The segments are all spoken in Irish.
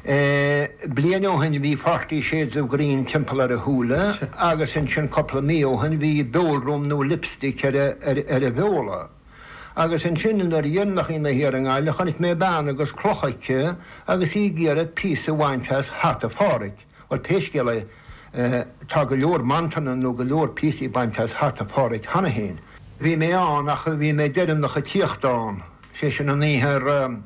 Bliain ó shin bhí páirtí Shades of Green timpeall ar a shúile agus ansin cúpla mí ó shin bhí beoldath nó lipstick ar a bheola. Agus ansin i ndeireanachaí na hiarngaile chonaic mé bean agus cloch aici agus í ag iarraidh píosa a bhaint as hata Pháraic. Bhuel pé scéal é, tá go leor mantanna nó go leor píosaí bainte as hata Pháraic cheana féin. Bhí mé ann ach bhí mé deireanach ag tíocht ann, sé sin an oíche ar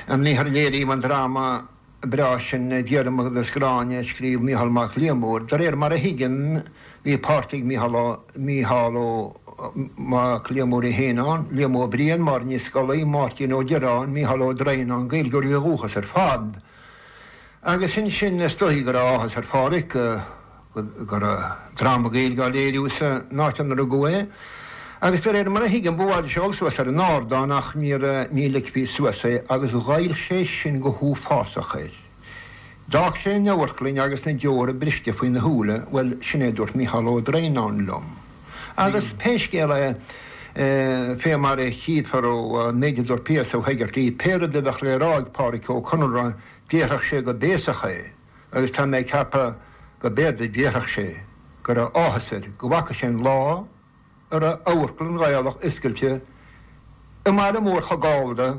a léiríodh an dráma breá sin Diarmaid agus Gráinne a scríobh Mícheál Mac Liammóir. De réir mar a thuigim bhí páirt ag Mícheál Ó, Mícheál Ó, Mac Liammóir é féin ann, Liam Ó Briain, Máirín Ní Scolaí, Máirtín Ó Direáin, Mícheál Ó Droighneáin, Gaeilgeoirí ó dhúchas ar fad. Agus ansin is dóigh go raibh áthas ar Phádhraic go. go raibh dráma Gaeilge á léiriú sa n-áit inar rugadh é, agus de réir mar a thuigim ba mhaith leis a dhul suas ar an ardán ach ní ligfí suas é agus ghoill sé sin go huafásach air. D'fhág sé an amharclainn agus na deora briste faoina shúile, bhuel sin é a dúirt Micheál Ó Droighneán liom. Agus pé scéal é, fé mar a chífear ón méid a dúirt P.S. Ó hEigeartaigh, pé rud a bheadh le rá ag Pádraic Ó Conaire déarfadh sé go béasach é, agus tá mé ag ceapadh go mb'fhéidir go ndéarfadh sé go raibh áthas air go bhfaca sé an lá a raibh Amharclann Ghaelach oscailte i mbaile mór chomh Gallda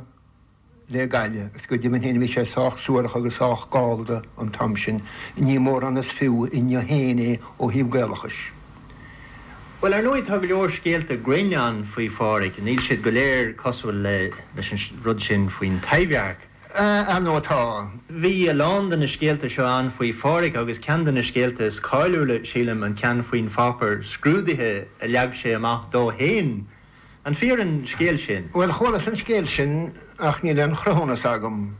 le Gaillimh agus go deimhin féin bhí sé sách suarach agus sách Gallda an t-am sin. Ní mórán is fiú inniu féin é ó thaobh Gaelachais. Bhuel, ar ndóigh tá go leor scéalta grinn ann faoi Phádhraic. Níl siad go léir cosúil leis an rud sin faoin Taibhdhearc. Ar ndóigh tá. Bhí a lán de na scéalta seo ann faoi Pháraic agus ceann de na scéalta is cáiliúla, sílim, an ceann faoin pháipear scrúdaithe a leag sé amach dó fhéin. An fíor an scéal sin? Bhuel, chualas an scéal sin ach níl aon chruthúnas agam.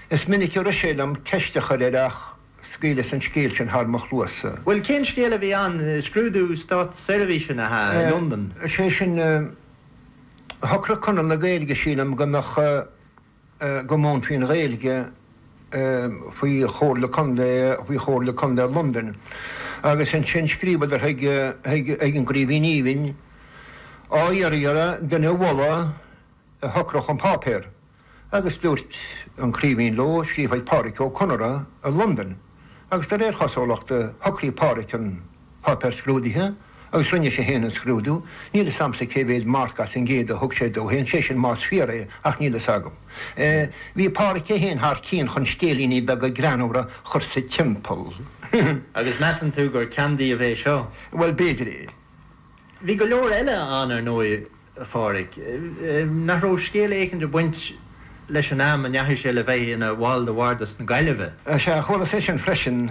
Is minic a rith sé liom ceist a chur air ach scaoileas an scéal sin thar mo chluasa. Bhuel, cén scéal a bhí ann? Scrúdú státseirbhíse, nach ea, i Londain? Sé sin, shocraigh Conradh na Gaeilge, sílim, go mbeadh. go múinfí an Ghaeilge faoi Chomhairle Contae faoi Chomhairle Contae Londain agus ansin scríobhadar chuig chuig an gCraoibhín Aoibhinn á iarraidh air duine a mholadh a shocródh an páipéar agus dúirt an Craoibhín leo scríobh chuig Pádraic Ó Conaire i Londain. agus de réir chosúlachta shocraigh Páraic an páipéar scrúdaithe agus rinne sé fhéin an scrúdú, níl 'fhios a'msa cé mhéad marc as an gcéad a thug sé dó fhéin, sé sin más fíor é ach níl 'fhios agam. Bhí Páraic é fhéin thar cíonn chun scéilíní beaga greannmhara a chur sa timpeall. Agus measann tú gur ceann díobh é seo? Bhuel, b'fhéidir é. Bhí go leor eile ann ar ndóigh. a Phádraic. Nach raibh scéal éicint ag baint leis an am a ndeachaigh sé le bheith ina bhall de Bhardas na Gaillimhe? Is ea, chualas é sin freisin.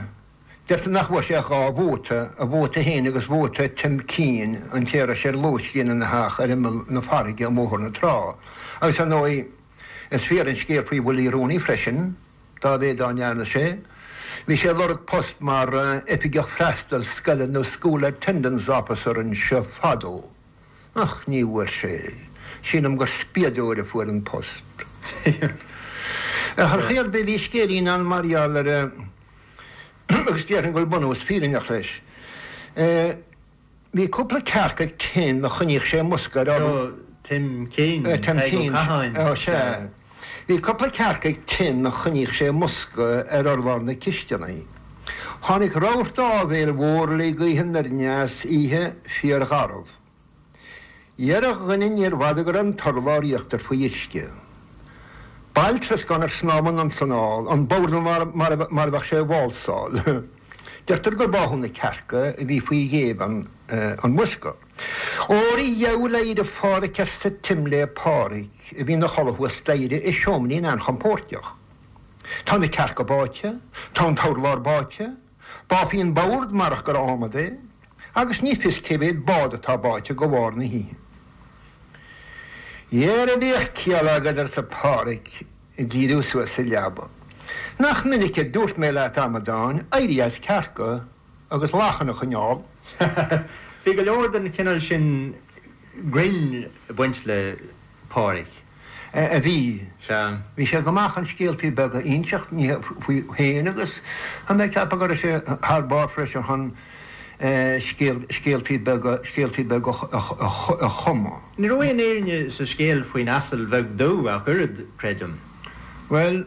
Deirtear nach bhfuair sé ach dhá vóta, a vóta féin agus vóta Tim Keane, an té a raibh sé ar lóistín ina theach ar imeall na farraige i mBóthar na Trá. Agus ar ndóigh, is fíor an scéal faoi Willie Rooney freisin, dá mhéad dá ndearna sé, bhí sé ag lorg post mar oifigeach freastail scoile nó school attendance officer anseo fadó. Ach ní bhfuair sé. Sílim gur spiadóir a fuair an post. Ar chaoi ar bith bhí scéilín ann mar gheall air agus déarfainn go bhfuil bunús fírinneach leis. Bhí cúpla cearc ag Tim a choinníodh sé i mbosca ar. Tim Keane, Tadhg Ó Catháin. Sea. Bhí cúpla cearc ag Tim a choinníodh sé i mbosca ar urlár na cisteanaí. Tháinig rabharta áibhéil mhór le gaoth aniar aneas oíche fíorgharbh. Dhera a dhuine níorbh fhada go raibh an t-urlár íochtair faoi uisce. Baill troscáin ar snámh anonn is anall, an bord mar a bheadh sé ag válsáil. Deirtear gur báthadh na cearca a bhí faoi ghéibheann i mbosca. Ó a Rí gheal éirigh a Phádraig arsa Tim le Pádraig a bhí ina chodladh thuas staighre i seoimrín an-chompóirteach. Tá na cearca báite, tá an t-urlár báite, báfaí an bord marach gur ádhmad é, agus ní fios cé mhéad bád atá báite de bharr na hoíche. Dhera bíodh ciall agat arsa Pádraig ag díriú suas sa leaba. Nach minic a dúirt mé leat, a amadáin, éirí as cearca! agus lachain a choinneáil. Bhí go leor den chineal sin grinn ag baint le Pádhraic. a bhí. Sea. Bhí sé go maith chun scéaltaí beaga a inseacht, ní faoi féin agus tá mé ag ceapadh go raibh sé thar barr freisin chun scéaltaí beaga, scéaltaí beaga a chumadh. Ní raibh aon fhírinne sa scéal faoin asal bheag dubh ach oiread, creidim. Bhuel.